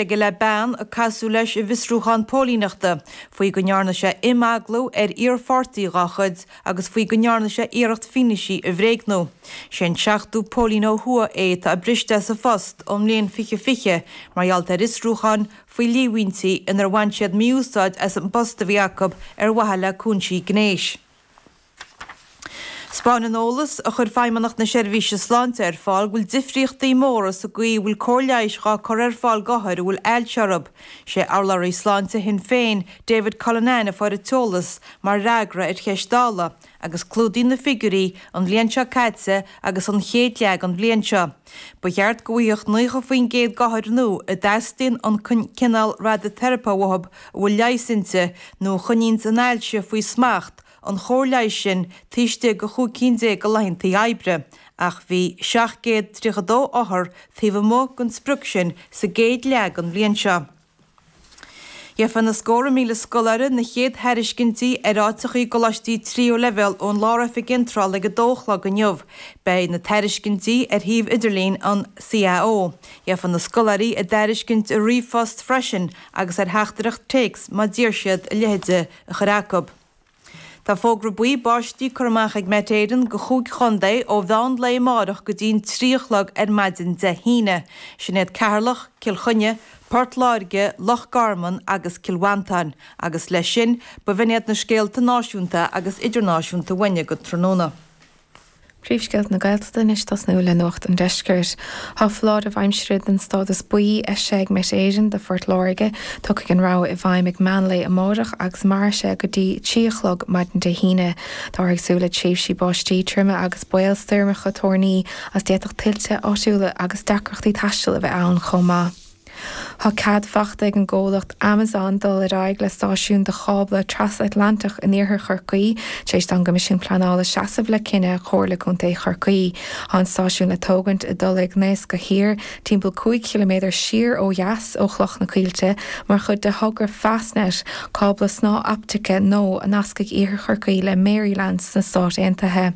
aige le bean a casadh leis i bhfiosrúchán póilíneachta faoi go ndearna sé imeagla ar iarpháirtí dha chuid agus faoi go ndearna sé iarracht fianaise a bhréagnú. Sé an seachtú póilín ó thuaidh é atá briste as a phost ón mbliain 2020 mar gheall ar fhiosrúcháin faoi líomhaintí inar bhain siad mí-úsáid as an bpost a bhí acu ar mhaithe le cúinsí gnéis. 'Spáineann eolas a chuir Feidhmeannacht na Seirbhíse Sláinte ar fáil go bhfuil difríochtaí móra sa gcaoi a bhfuil cóir leighis dhá cur ar fáil d'othair a bhfuil ailse orthu, sé Urlabhraí Sláinte Shinn Féin, David Cullinane a fuair an t-eolas mar fhreagra ar cheist Dála agus clúdaíonn na figiúirí an bhliain seo caite agus an chéad leath den bhliain seo. Ba cheart go bhfaigheadh 90% d'othair nua a dteastaíonn an cineál radaiteiripe uathu a bhfuil leigheas inti nó a choinníonn an ailse faoi smacht, an chóir leighis sin taobh istigh de chúig cinn déag de laethanta oibre, ach bhí 732 othar taobh amuigh den sprioc sin sa gcéad leath den bhliain seo. Gheobhaidh na scórtha míle scoláire na chéad thairiscintí ar áiteacha i gcoláistí tríú leibhéal ón Lár-Oifig Iontrála ag a dó a chlog inniu. Beidh na tairiscintí ar shuíomh idirlín an CAO. Gheobhaidh na scoláirí a dtairiscint i ríomhphost freisin agus ar theachtaireacht téacs má d'iarr siad a leithéid a chur acu. Tá fógra buí báistí curtha amach ag Met Éireann do chúig chontae ó mheán lae amárach go dtí'n trí a chlog ar maidin Dé hAoine, sin iad Ceatharlach, Cill Chainnigh, Port Láirge, Loch Garman agus Cill Mhantáin agus leis sin b'in iad na scéalta náisiúnta agus idirnáisiúnta uainne go tráthnóna. Príomhscéalta na Gaeltachta anois tosnú le Nuacht an Deiscirt. Tá foláireamh aimsire den stádas buí eisithe ag Met Éireann do Phort Láirge. Tiocfaidh an rabhadh i bhfeidhm ag meán lae amárach agus mairfidh sé go dtí trí a chlog maidin Dé hAoine. Táthar ag súil le tréimhsí báistí troime agus baol stoirmeacha toirní is d'fhéadfadh tuilte áitiúla agus deacrachtaí taistil a bheith ann chomh maith. Tá cead fachta ag an gcomhlacht Amazon dul ar aghaidh le stáisiún do chábla trasatlantach in iarthar Chorcaí tar éis don gCoimisiún Pleanála seasamh le cinneadh Chomhairle Contae Chorcaí. Tá an stáisiún le tógaint i dTulaigh Naoisce Thiar, timpeall 5 km siar ó dheas ó Chloch na Coillte, mar chuid de thogra Fastnet, cábla snáthoptaice nua a nascfaidh iarthar Chorcaí le Maryland sna Stáit Aontaithe.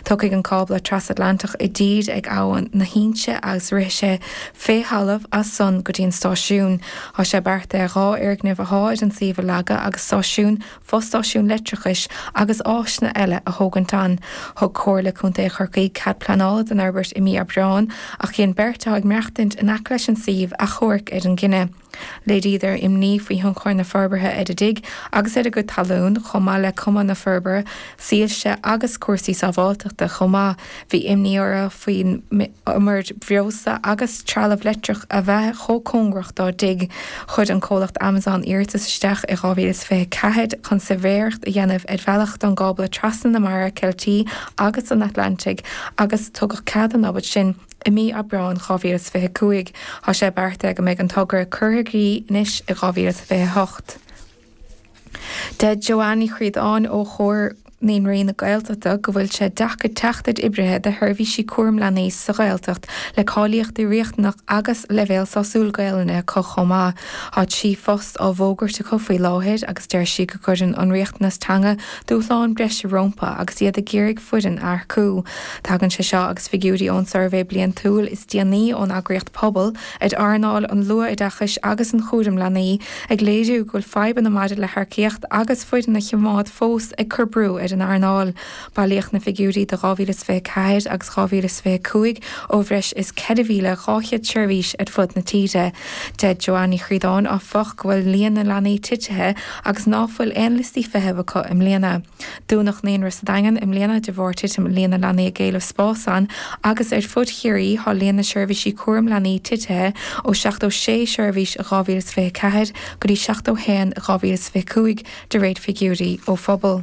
Tiocfaidh an cábla trasatlantach i dtír ag Abhainn na hInse agus rithfidh sé fé thalamh as san go dtí an stáisiún. Tá sé beartaithe dhá fhoirgneamh athá ar an suíomh a leagadh agus stáisiún, fostáisiún leictreachais agus áiseanna eile a thógaint ann. Thug Comhairle Contae Chorcaí cead pleanála don fhorbairt i mí Aibreán ach dhein beirt athá ag maireachtaint in aice leis an suíomh achomhairc ar an gcinneadh. Léiríodar imní faoi thionchar na forbartha ar a dtigh agus ar a gcuid talún, chomh maith le cuma na forbartha, soilse agus cúrsaí sábháilteachta chomh maith. Bhí imní orthu faoin iomaire breosla agus trealamh leictreach a bheith chomh cóngarach dá dtigh. Chuir an comhlacht Amazon iarratas isteach i 2024 chun suirbhéireacht a dhéanamh ar bhealach don gcábla trasna na Mara Ceiltí agus an Atlantaigh agus tugadh cead an obair sin i mí Aibreáin 2025. Tá sé beartaithe go mbeidh an togra curtha i gcrích anois i 2028. Deir Joanne Ní Chríodáin ó Chomhar Naíonraí na Gaeltachta go bhfuil sé deacair teacht ar oibrithe do sheirbhísí cúram leanaí sa Ghaeltacht le cáilíochtaí riachtanach agus leibhéal sásúil Gaelainne acu chomh maith. Tá trí phost á bhfógairt acu faoi láthair agus deir sí go gcuireann an riachtanas teanga Dúshlán breise rómpa agus iad ag iarraidh foireann a earcú. Tagann sé seo agus figiúirí ón suirbhé bliantúil is déanaí ón eagraíocht Pobal ar earnáil an luath-oideachais agus an chúraim leanaí ag léiriú go bhfuil fadhbanna maidir le hearcaíocht agus foireann a choimeád fós ag cur brú ar an earnáil. Bailíodh na figiúirí do 2024 agus 2025 ó bhreis is 4,200 seirbhís ar fud na tíre. Deir Joanne Ní Chríodáin, áfach, go bhfuil líon na leanaí titithe, agus ná fuil aon liostaí feithimh acu i mbliana. Dúnadh naíonra sa Daingean i mbliana de bharr titim líon na leanaí ag éileamh spás ann agus ar fud Chiarraí thá líon na seirbhísí cúram leanaí titithe ó 76 seirbhís i 2024 go dtí 71 i 2025 de réir figiúirí ó Phobal.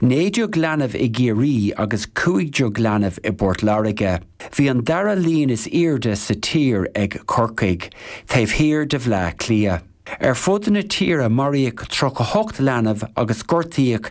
Naoi déag leanbh i gCiarraí agus cúig déag leanbh i bPort Láirge. Bhí an dara líon is aoirde sa tír ag Corcaigh, taobh thiar de Bhleá Cliath. Ar fud na tíre maraíodh tríocha ocht leanbh agus gortaíodh